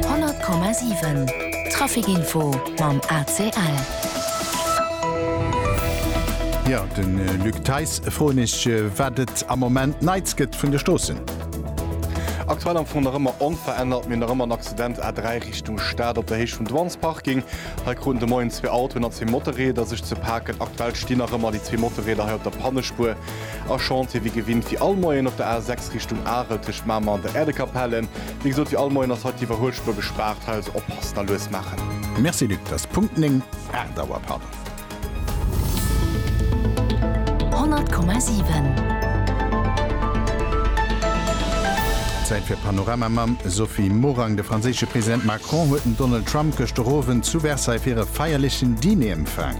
100,7 Trafic-Info mam ACL. Jo, de Luc Theis froen ech, wat et am Moment Neits gëtt vun de Stroossen. Aktuell am Fong nach ëmmer onverännert. Mir hunn nach ëmmer en Accident A3 Richtung Stad op der Héicht vum Dwan's Parking. Hei kruten de Moien zwee Autoen a zwee Motorräder sech ze paken. Aktuell stinn nach ëmmer déi zwee Motorräder hei op der Pannespuer. A Chantier wéi gewinnt fir all Moien op der A6 Richtung Arel tëscht Mamer an der Äerdekapelle. Wéi gesot, fir all Moien ass hei d'Iwwerhuelspuer gespaart, hei also oppassen a lues maachen. Merci Luc, et ass Punkt 9, 8 Auer pardon. 100,7. Zäit fir Panorama mam Sophie Morang. De franséische President Macron huet den Donald Trump gëscht de rowend zu Versailles fir e feierlechen Diner empfaang.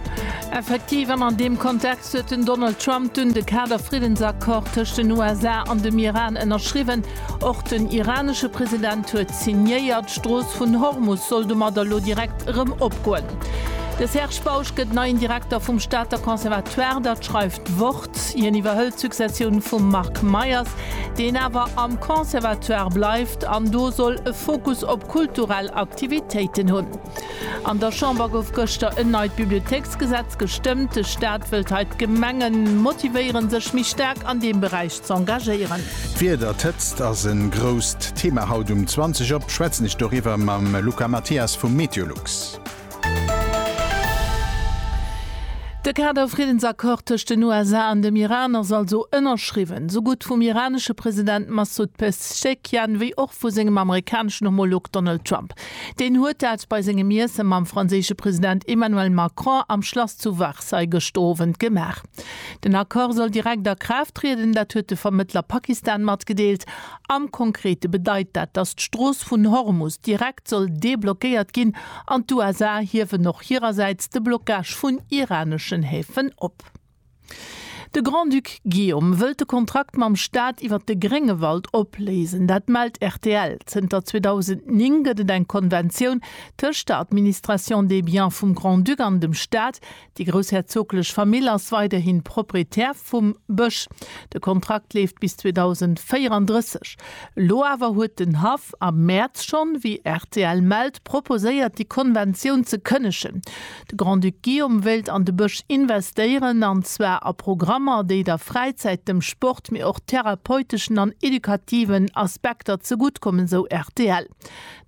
Effektiv, an an deem Kontext. Mäerz huet den Donald Trump dunn de Kader-Friddensaccord tëscht den USA an dem Iran ënnerschriwwen. Och den iranesche President huet signéiert. D'Strooss vun Hormus soll domadder elo direkt erëm opgoen. De Serge Bausch gëtt neien Direkter vum Stater Conservatoire, dat schreift d'Wort. Hien iwwerhëlt d'Successioun vum Marc Meyers, deen awer am Conservatoire bleift an do soll e Fokus op kulturell Aktivitéiten hunn. An der Chamber gouf gëschter en neit Bibliothéiksgesetz gestëmmt. De Staat wëllt hei d'Gemengen motivéieren, sech méi staark an deem Beräich z'engagéieren. D'Wieder, d'Hëtzt ass e grousst Thema haut. Um 20 op schwätzen ech doriwwer mam Luca Mathias vu Meteolux. De Kader-Friddensaccord tëscht den USA an dem Iran ass also ënnerschriwwen. Sou gutt vum iranesche President Massoud Pezeshkian wéi och vu sengem amerikaneschen Homolog Donald Trump. Deen huet dat bei sengem Iesse mam franséische President Emmanuel Macron am Schlass zu Varssailles gëschter Owend gemaach. Den Accord soll direkt a Kraaft trieden, dat huet de Vermëttler Pakistan matgedeelt. Am Konkrete bedeit dat, datt d'Strooss vun Hormus direkt soll deblockéiert ginn an d'USA hiewen och hirersäits de Blockage vun iraneschen Häfen op. De Grand-Duc Guillaume wëllt de Kontrakt mam Staat iwwer de Gréngewald opléisen. Dat mellt rtl. Zënter 2009 gëtt et eng Konventioun tëscht der Administration des biens vum Grand-Duc an dem Staat. Déi groussherzoglech Famill ass weiderhi Proprietär vum Bësch. De Kontrakt leeft bis 2034. Elo awer huet den Haff am Mäerz schonn, wéi rtl mellt, proposéiert, déi Konventioun ze kënnegen. De Grand-Duc Guillaume wéilt an de Bësch investéieren, an zwar a Programmer, déi der Fräizäit, dem Sport, mee och therapeuteschen an edukativen Aspekter zegutt kommen, sou rtl.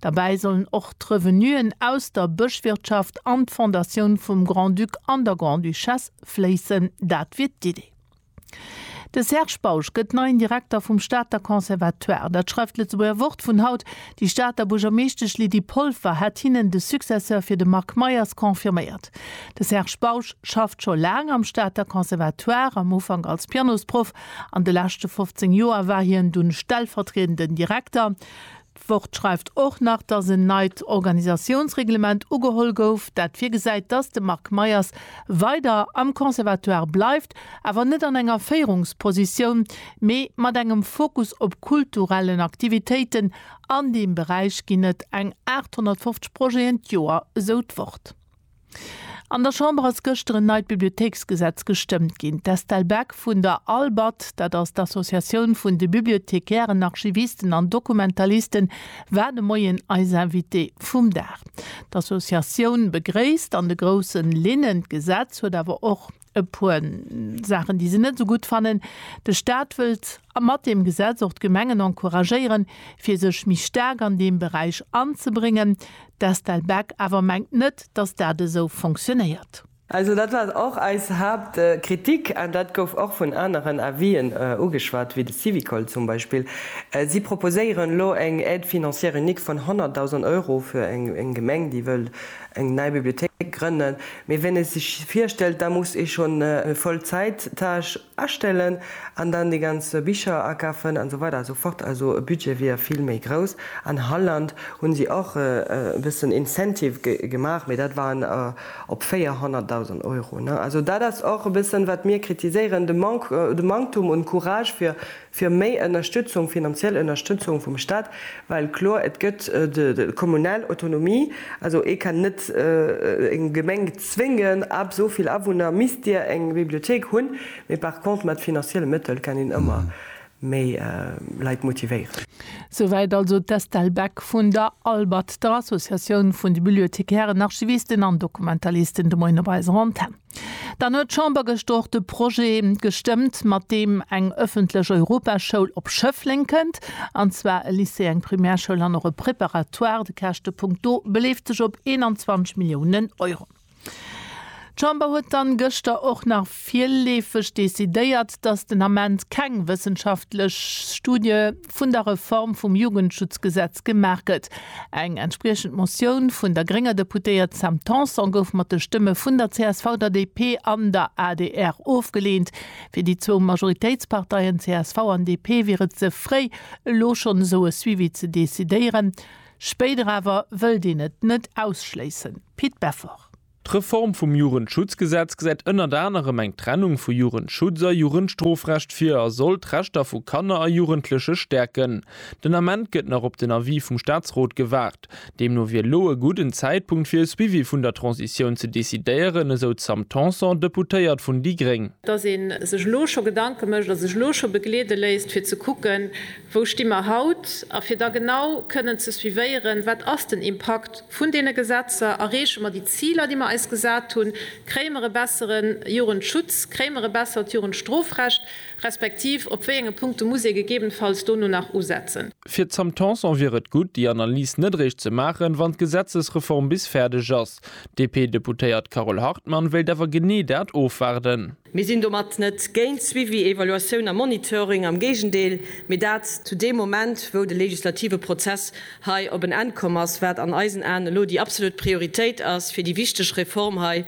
Derbäi sollen och d'Revenuen aus der Bëschwirtschaft an d'Fondatioun vum Grand-Duc an der Grande-Duchesse fléissen. Dat wier d'Idee. De Serge Bausch gëtt neien Direkter vum Stater Conservatoire. Dat schreift d'Lëtzebuerger Wort vun haut. Déi Stater Buergermeeschtesch Lydie Polfer hat hinnen de Successeur fir de Marc Meyers confirméiert. De Serge Bausch schafft scho laang am Stater Conservatoire, am Ufank als Pianosproff. An de leschte 15 Joer war hien dunn stellvertriedenden Direkter. D'Wort schreift och nach, datt en neit Organisatiounsreglement ugeholl gouf, dat virgesäit, datt de Marc Meyers weider am Conservatoire bleift, awer net an enger Féierungspositioun, mee mat engem Fokus op kulturellen Aktivitéiten. An deem Beräich ginn et eng 850 Projeten d'Joer, esou d'Wort. An der Chamber ass gëschter en neit Bibliothéiksgesetz gestëmmt ginn. D'Estelle Beck vun der ALBAD, dat ass d'Associatioun vun de Bibliothekairen, Archivisten an Dokumentalisten, war de Moien eis Invitée vum Dag. D'Associatioun begréisst an de groussen Linnen d'Gesetz, huet awer och E puer Saachen, déi se net esou gutt fannen, De Staat wëllt mat deem Gesetz och d'Gemengen encouragéieren, fir sech méi staark an deem Beräich anzebréngen. D'Estelle Beck awer mengt net, datt dat esou fonctionéiert. Also dat war och eis Haaptkritik an dat gouf och vun aneren Avis'en ugeschwat, wéi de Syvicol zum Beispill. Si proposéieren elo eng Aide financière unique vun 100.000 Euro fir eng Gemeng, déi wëll eng nei Bibliothéik grënnen, mee ween ee sech virstellt, da muss ee schonn e Vollzäit-Tâche astellen an dann déi ganz Bicher akafen an esou weider esou fort. Also e Budget wier vill méi grouss. An Holland hu si och e bëssen Incentive gemaach, mee dat waren op 400.000 Euro. Also dat ass och e bëssen, wat mir kritiséieren, de Manktum un Courage fir fir méi Ënnerstützung, finanziell Ënnerstützung vum Stat, well kloer et gëtt de kommunal Autonomie, also ee kann net eng Gemeng zwéngen, ab esou vill Awunner misst dir eng Bibliothék hunn, mee par contre mat finanzielle Mëttel kann een ëmmer méi Leit motivéieren. Souwäit also d'Estelle Beck vun der ALBAD, der Associatioun vun de Bibliothekären, Archivisten an Dokumentalisten, de Moien op eiser Antenn. Dann huet d'Chamber gëschter och de Projet gestëmmt, mat deem eng ëffentlech Europaschoul op Schëffleng kënnt, an zwar e Lycée, eng Primärschoul an och e Préparatoire. De Käschtepunkt do beleeft sech op 21 Milliounen Euro. D'Chamber huet dann gëschter och nach virleefeg decidéiert, dass den Ament keng wëssenschaftlech Studie vun der Reform vum Jugendschutzgesetz gemaach gëtt. Eng entspriechend Motioun vun der grénger Deputéiert Sam Tanson gouf mat de Stëmme vun der csv, der DP an der adr ofgeleent. Fir déi zwou Majoritéitsparteien csv an DP wier et ze fréi, elo schonn esou e Suivi ze decidéieren. Spéider awer wëllt een et net ausschléissen. Pit Beffort. D'Reform vum Jugendschutzgesetz gesäit ënnert anerem eng Trennung vu Jugendschutz a Jugendstrofrecht vir a soll d'Rechter vu Kanner a Jugendleche stäerken. Den Ament gëtt nach op den Avis vum Staatsrot gewaart. Deemno wier elo e gudden Zäitpunkt fir e Suivi vun der Transitioun ze decidéieren, esou d'Sam Tanson, Deputéiert vun déi gréng. Dass ee sech elo scho Gedanke mécht a sech elo scho begleede léisst, fir ze kucken, Wou sti mer haut? A fir da genau kënnen ze suivéieren, wat ass den Impakt vun deene Gesetzer, erreeche mer déi Ziler, déi mer eis gesat hunn, kréie mer e bessere Jugendschutz, kréie mer e bessert Jugendstrofrecht, respektiv op wéi enge Punkte muss ee gegebenfalls dono nach usetzen? Fir d'Sam Tanson wier et gutt, déi Analys net eréischt ze maachen, wann d'Gesetzesreform bis fäerdeg ass. D'DP-Deputéiert Carole Hartmann wéilt awer genee dat ofwaarden. Mir sinn domat net géint Suivi, Evaluatioun a Monitoring, am Géigendeel, mee dat zu deem Moment, wou de legislative Prozess hei op en Enn komm ass, wat an eisen Aen elo déi absolut Prioritéit ass, fir déi wichteg Reform hei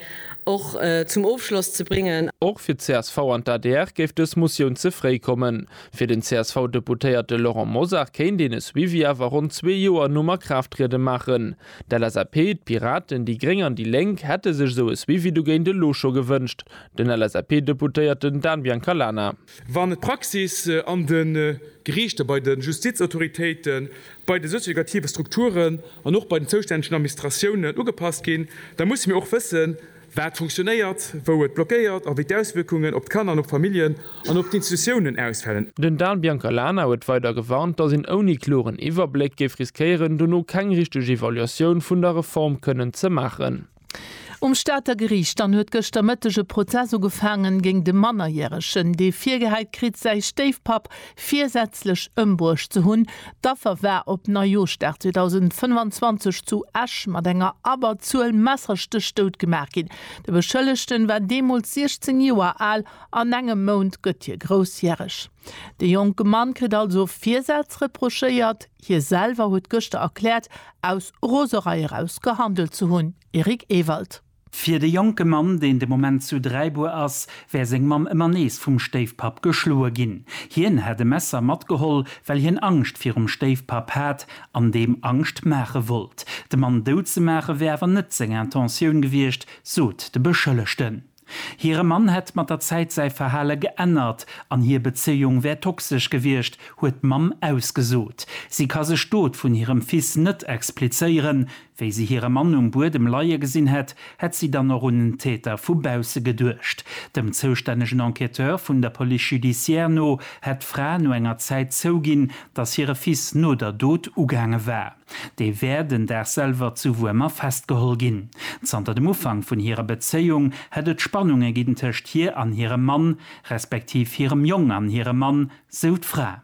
och zum Ofschloss ze bréngen. Och fir csv an d'ADR géif dës Motioun ze fréi kommen. Fir den CSV-Deputéierte Laurent Mosar kéint een e Suivi awer ronn zwee Joer nom Akraafttriede maachen. D'LSAP, d'Piraten, déi Gréng an déi Lénk hätte sech esou e Suivi dogéint elo scho gewënscht. Den LSAP-Deputéierten Dan Biancalana. Wann d'Praxis an de Geriichter, bei de Justizautoritéiten, bei de sozioeducative Strukturen an och bei den zoustännegen Administratiounen ugepasst ginn, da musse mir och wëssen, wat funktionéiert, wou et blockéiert a wéi d'Auswierkungen op d'Kanner an op d'Familljen an op d'Institutiounen ausfälen. Den Dan Biancalana huet weider gewarnt, datt een ouni kloren Iwwerbléck géif riskéieren, dono keng richteg Evaluatioun vun der Reform kënnen ze maachen. Um Stater Geriicht dann huet gëschter Mëtteg e Prozess ugefaangen géing de Mannerjäregen, dee virgehäit kritt, säi Stéifpapp, virsätzlech ëmbruecht ze hunn. D'Affer war op Neijooschdag 2025 zu Esch mat enger Abberzuel Messerstéch dout gemaach ginn. De Beschëllegten war deemools 16 Joer al, an engem Mount gëtt hie groussjäreg. De jonke Mann kritt also Virsätz reprochéiert. Hie selwer huet gëschter erkläert, aus Roserei eraus gehandelt ze hunn. Eric Ewald. Fir de jonke Mann, deen de Moment zu Dräibuer ass, wär seng Mamm ëmmer nees vum Stéifpapp geschloe ginn. Hien hätt e Messer matgeholl, well hien Angscht virum Stéifpapp hat an deem Angscht maache wollt. De Mann dout ze maache wär awer net seng Intentioun gewiescht, sot de Beschëllegten. Hire Mann hätt mat der Zäit säi Verhale geännert an hir Bezéiung wär toxesch gewiescht, huet d'Mamm ausgesot. Si ka sech d'Dot vun hirem Fils net explizéieren, Wéi si hire Mann um Buedem leie gesinn hätt, hätt si dann och un en Täter vu bausse geduecht. Dem zoustännegen Enquêteur vun der Police judiciaire no hätt d'Fra no enger Zäit zouginn, datt hire Fils no der Dot ugaange war. Dee wär den Dag selwer zu Wuermer festgeholl ginn. Zanter dem Ufank vun hirer Bezéiung hätt et Spannunge ginn tëscht hir an hirem Mann, respektiv hirem Jong an hirem Mann, sou d'Fra.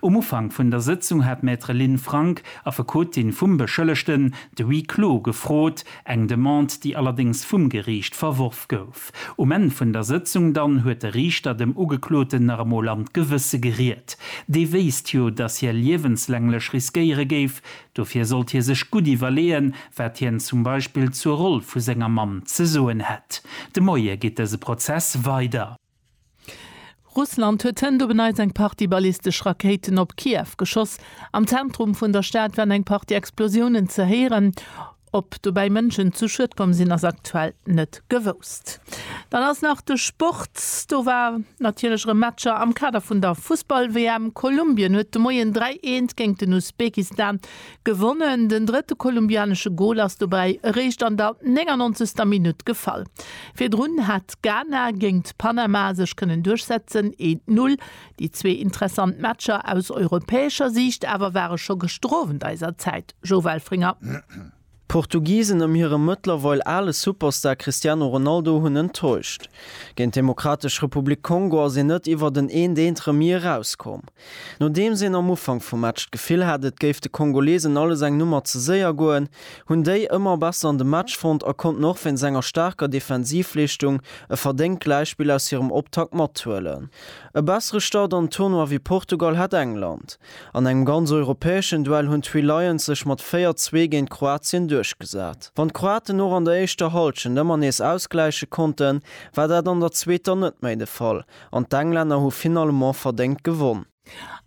Um Ufank vun der Sëtzung hat d'Maître Lynn Frank, Affekotin vum Beschëllegten, de Huis clos gefrot, eng Demande, déi allerdéngs vum Geriicht verworf gouf. Um Enn vun der Sëtzung dann huet de Riichter dem Ugekloten nach emol an d'Gewësse geriet. Dee wéisst jo, datt hie liewenslänglech riskéiere géif. Dofir sollt hie sech gutt iwwerleeën, wat hien zum Beispill zur Roll vu senger Mamm ze soen hätt. De Moie geet dëse Prozess weider. Russland huet hënt op en Neits eng Partie ballistesch Rakéiten op Kiew geschoss. Am Zentrum vun der Stad waren eng Partie Explosiounen ze héieren. Ob dobäi Mënschen zu Schued komm sinn, ass aktuell net gewousst. Dann ass nach de Sport. Do war natierlech erëm Matcher am Kader vun der Fussball-WM. Kolumbien huet de Moien 3, 1 géint den Usbekistan Gewonnen. Den drëtte kolumbianesche Gol ass dobäi eréischt an der 99. Minutt gefall. Virdrun hat Ghana géingt Panama sech kënnen duerchsetzen, eent Null. Déi zwee interessant Matcher aus europäescher Siicht awer ware scho gestrowend eiser Zäit, Joe Welfringer. D'Portugisen ëm hire mëttlerweil ale Superstar Cristiano Ronaldo hunn enttäuscht. Géint d'Demokratesch Republik Kongo ass een net iwwert en Eent-Eent-Remis erauskomm. Nodeems een am Ufank vum Match d'Gefill hat, et géif de Kongolesen alles eng Nummer ze séier goen, hunn déi ëmmer besser an de Match fonnt a konnten och wéinst enger staarker Defensivleeschtung e verdéngt Gläichspill aus hirem Optakt mathuelen. E bessere Start an den Tournoi wéi Portugal hat England. An engem ganz europäeschen Duell hunn d'Three Lions sech mat 4, 2 géint Kroatien duerchgesat. Wann d'Kroaten och an der éischter Hallschent ëmmer nees ausgläiche konnten, war dat an der zweeter net méi de Fall An d'Englänner hu finalement verdéngt gewonn.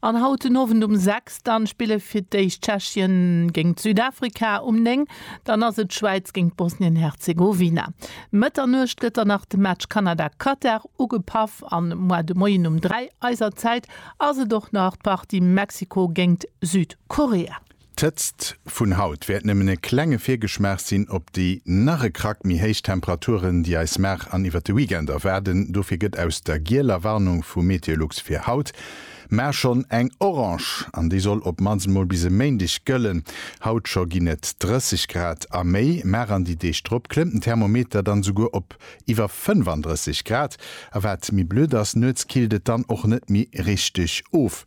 An haut den Owend um 6 dann spille fir d'éischt Tschechien géingt Südafrika, um 9 dann ass et d'Schwäiz géingt Bosnien-Herzegowina. Mëtternuecht gëtt dann nach de Match Kanada-Katar ugepaff an moi de Moien um 3 eiser Zäit ass et och nach d'Partie Mexiko géingt Südkorea. D'Hëtzt vun haut wäert nëmmen e klenge Virgeschmaach sinn op déi nach e Krack méi héich Temperaturen, déi eis Mar an iwwert de Weekend erwaarden. Dofir gëtt aus der gieler Warnung vu Meteolux fir haut mar schonn eng orange an déi soll op mannst emol bis e Méindeg gëllen. Haut scho ginn et 30 Grad a méi, mar an déi Deeg drop klëmmt den Thermometer dann esouguer op iwwer 35 Grad. A wat méi blöd ass, nuets killt et dann och net méi richteg of.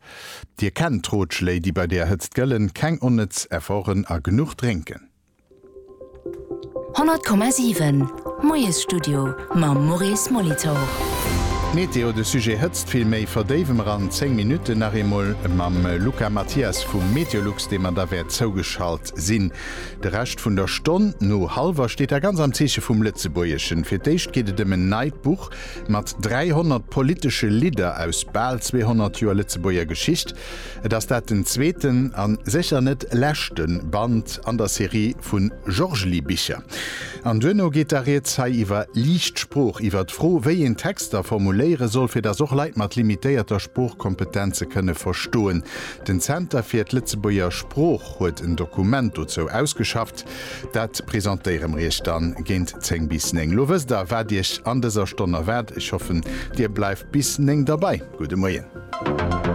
Dir kennt d'Rotschléi déi bei der Hëtzt gëllen, keng onnëtz Efforten a genuch drénken. 100,7 Moiesstudio mam Maurice Molitor. Météo, de Sujet Hëtzt vill méi verdéiwe mer an 10 Minutten nach eemol mam Luca Mathias vu Meteolux, deem mer da wäert zougeschalt sinn. De Rescht vun der Stonn no hallwer steet da ganz am Zeeche vum Lëtzebuergeschen. Fir d'éischt geet et ëm en neit Buch, Mat 300 politesche Lidder aus bal 200 Joer Lëtzebuerger Geschicht, et ass dat den zweeten a sécher net leschte Band an der Serie vu Jorgli-Bicher. An duerno geet da rieds hei iwwer liicht Sprooch, iwwer d'Fro, wéi een Texter formuléiere soll, fir datt och Leit mat limitéierter Sproochkompetenz se kënne verstoen. Den Zenter fir d'Lëtzebuerger Sprooch huet en Dokument dozou ausgeschafft. Dat presentéiere mer Iech dann géint 10 bis 9. Lo wësst der, wat Iech an dëser Stonn erwaart. Ech hoffen, Dir bleift bis 9 derbei. Gudde Moien.